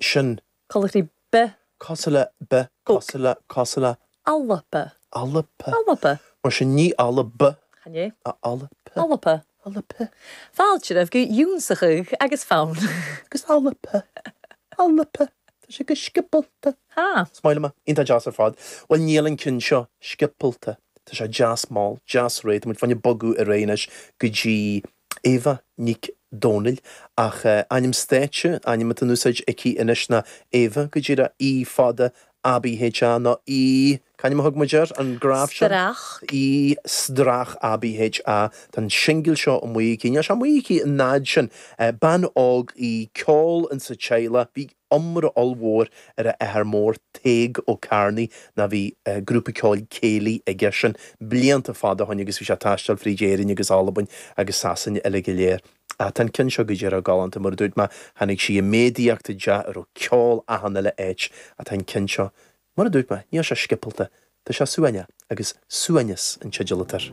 sin. Collachtaí Ba. cosúla Ba cosúla cosúla. Alba. Alba. Alba. Mar sin, ní Alb. Chan ea. A Alba. Alba. Alba. Fáilte romhaibh go ionnsachadh agus fonn. Agus Alba. Alba. Tá sé go sciobalta. Há. Smaoiním a. Iontach deas ar fad. Bhuel, níl an ceann seo sciobalta. Tá sé deas mall, deas réidh. Tá muid fána bhogadh ar aghaidh anois go dtí. Éabha Nic Dhomhnaill, ach ainm stáitse, ainm atá in úsáid aici anois ná Éabha, go díreach, E fada, A B H A, nó E, c'ainm a thug muid air, an graf seo? Stràc. E stràc, A B H A, tá an single seo amuigh aici. Níl sé amuigh aici an fhad sin. Bean óg í, ceol insa teaghlach. Bhí. iomrá ollmhór ar a hathair mór, Tadhg Ó Cearnaí, ná bhí grúpa ceoil céilí aigesean blianta fada ó shoin agus bhí sé ag taisteal fríd Éirinn agus Albain agus Sasain uilig go léir. Ach tá an ceann seo go díreach galánta, mar a dúirt mé, tháinig sí i méadaíocht i dteach a raibh ceol achan uile áit, ach tá an ceann seo, mar a dúirt mé, níl sé sciobalta, tá sé suaimhneach, agus Suaimhneas an teideal atá air.